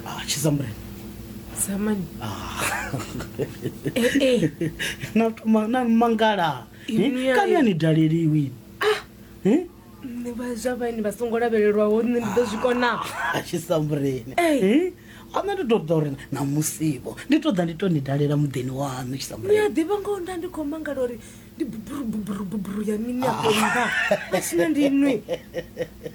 Ah, chizambre zamani Eh, eh. namangala Ini yayi. kani ani daleliwi Eh? nṋe vha zwa vhaini vha songo lavhelelwaho nṋe ndi ḓo zwi kona achisambureni Ei. ana ndi toda uri na musivo ndi toda ndi to ni dalela muḓini waṋu ni a chisambureni ḓivha ngoho nda ndi khou mangala uri ndi buburu buburu buburu ya mini afho nda vha tshina ndi nwi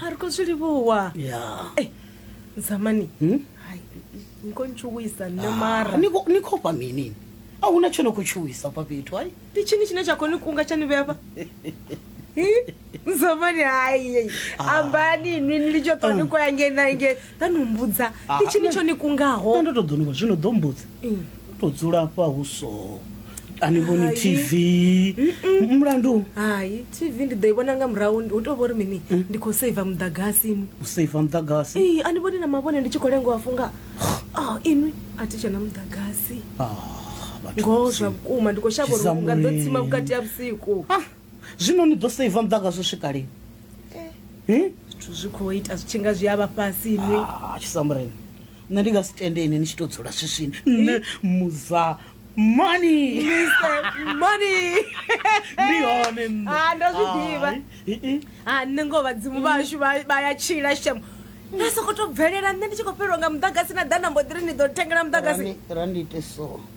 ha ri khou zwi livhuwa ya Eh, zamani Hmm? hai ni khou ntshuwisa nṋe mara ni khou- ni khou fha mini a huna tsho no khou tshuwisa fha fhethu ai ndi tshini tshine tsha khou ni kunga tsha ni vhea fha zamani hai ambani nwi ni litsho ṱwa ni khou ya ngei na ngei ḓa ni mbudza Ah, ndi tshini nṋe- tsho ni kungaho nṋe ndo to ḓo nivho zwino ḓo mbudza Mm. u to dzula afha hu so a ni vhoni Hai. tv M- mulandu hai tv ndi ḓo i vhona nga murahu hu tou vho ri mini Mm. ndi khou saiva muḓagasini u seiva muḓagasi ee a ni vhoni na mavhone ndi tshi khou lengo a funga oh, inwi a thi tshena muḓagasi Ah, vhathu ngoho vhusiku. zwa vhukuma ndi khou shavha uri Tshisamuele. unga ḓo tsima vhukati ha vhusiku Zwino ni ḓo seiva muḓagasi u swika lini? Hi? Zwithu zwi khou ita zwi tshi nga zwi a vha fhasi ni. Ah, Tshisamureni. Nṋe ndi nga si tende ini ni tshi tou dzula swiswini. Nṋe muza mani. Mani. Ndi hone nṋe. Ah, ndo zwi ḓivha. Hai. Hi, hi. Ah, nṋe ngoho vhadzimu vhashu vha vha ya tshila shem. Na soko to bvelela nṋe ndi tshi khou fhelelwa nga muḓagasi na ḓa na mbo ḓiri ni ḓo thengela muḓagasi. Rani rani ite so.